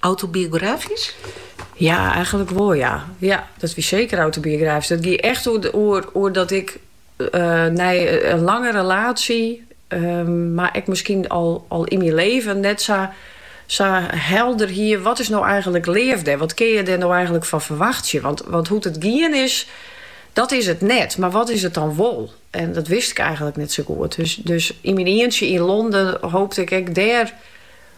Autobiografysk? Ja, eigenlik wol ja. Ja, dat wie seker autobiografysk. Dat gie echt oer dat ik eh, nei in lange relatie, ehm, mar ek miskien al, al yn myn leven net sa sa helder hie, wat is nou eigenlik leafde? Wat kin je der nou eigenlik fan ferwachtsje? Want, want hoe't it gien is, dat is it net. Mar wat is it dan wol? En dat wist ik eigenlik net sa goed. Dus, dus yn myn eentje yn Londen hoopte ik ek dêr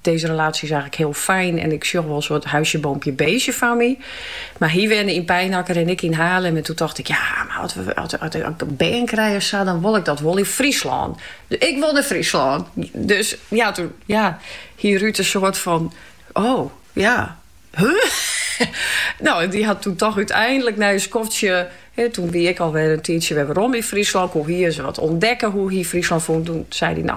Dizze relatie is eigenlik hiel fijn en ik sjoch wol in soart huisje, boompje, beestje foar my. Mar hy wenne yn Pijnacker en ik yn Haarlem en toen tocht ik, ja, mar as we as, as, ik in bern krij of sa, dan wol ik dat wol yn Fryslân. Ik wol nei Fryslân. Dus ja, toen ja, hie Ruud in soart fan, oh, ja, huh? nou, en dy hat toen toch úteindelik nei in skoftsje, hè, toen wie ik alwer in tiidsje wer werom yn Fryslân, koe hy sa wat ûntdekke, hoe't hy Fryslân fûn. Toen sei hy, nou,